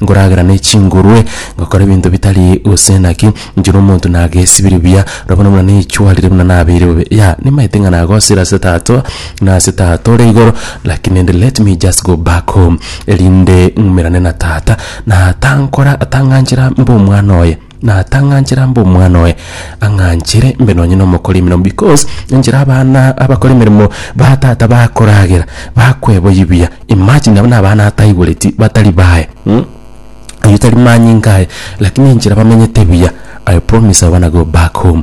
nkoragera ne chingurwe, ngakora ebinto bitari gose naki, inche na omonto nagesibirie buya, ora bono buna naichwarire buna nabeire bobe. Yea, nimaete ng'a nagosire ase Tata, na ase Tata ore igoro, lakini rende let me just go back home, erinde ng'umerane na Tata, na atankora, atang'anchera mbe omwana oye. natang'anchera mb'omwana oye ang'anchere mbe nonye nomokori emeremo because enchera abana abakora emeremo ba tata bakoragera bakweboyia buya imagine abwo nabana ataigureti batari baye mm oyio tari manyinga aye lakini enchera bamenyete buya I promise I wanna go back home.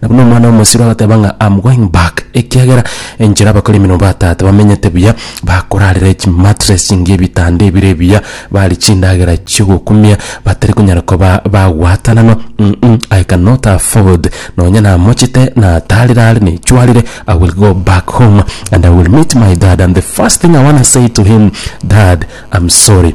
Na buna omwana omosiro agateba ng'a I'm going back, ekiagera enchera abakori emeremo ba tata bamenyete buya, bakorarera chimattress chingiya ebitanda ebire ebiya, barie chindagera chi'ogokumia, batari konyara koba bagwatananwa, mm I cannot afford, nonya namochete, natarire are, nechwarire, I will go back home and I will meet my dad and the first thing I wanna say to him, dad, I'm sorry.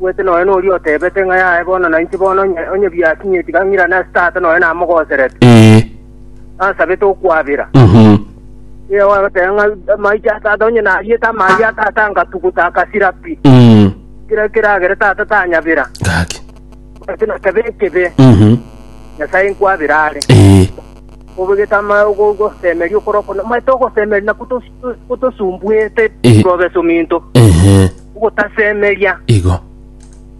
Bwete nonya noria otebete ng'a yaye bono na inche bono onye, onye biakinyire tiga ng'irane ase Tata nonya namogoserete. Ee. Nasabete okwabera. Mhm. Ee, ogoteba ng'a amaicho a Tata onye nariete amaabia a Tata angatuguta akasira pi. Mm. Kira keragere Tata tanyabera. Gaki. Bwete na kebe ekebe Mhm. Nyasae nkwabera are. Ee. Obegete ama ogo- ogosemeria okoro okona. Omanyete ogosemeria nakwo tosi Otosumbuete Eh. nkobe sominto. Ehe. Ogotasemeria. Igo.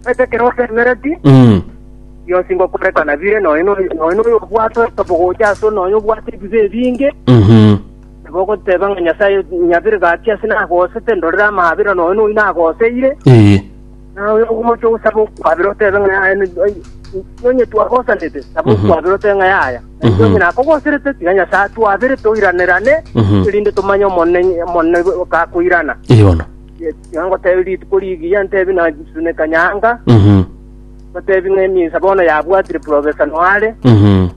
Omanyete ekero osemereti, Mm. bionsi ngokorekana bire noyo noyo noyo noyo obwate obogocha ase noyo obwate ebibe ebinge. Mhm. Nabo ogoteba ng'a Nyasaye nyabere gaki ase nagosete ndorere amabera noyo noyo nagoseire. Eh. Na oyo ogocha gosaba okwabera otebe ng'a yaya ni- ai- nonye twagosanete saba Mhm. okwabera otebe ng'a yaya Na Mhm. nonye nakogoserete tiga nyasae atwabere toiranerane Mhm. erinde tomanye omonene omonene gakoirana Eye bono. tiga ngotebe rituko rigiya ntebi nasuneka nyanga Mhm. ngotebi ng'a emisa bono yabwatire profesa noare Mhm.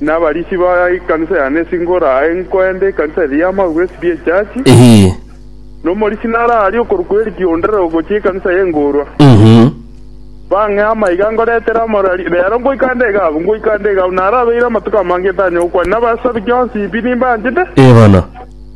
Nabarisi ba ekanisa ya Nesingora, aye nkoende ekanisa eria y'amagwe, SB Echurch, nomorisi naro aria okorokwa Eriki onde rogochia ekanisa y'engoorwa. Bang'ee amaiga ngoretere amo reero ngoika nde iga abwo, ngoika nde iga abwo. Narabeire amatuko amange etanyokwa, nabasabi kionsi pi nimbanchete.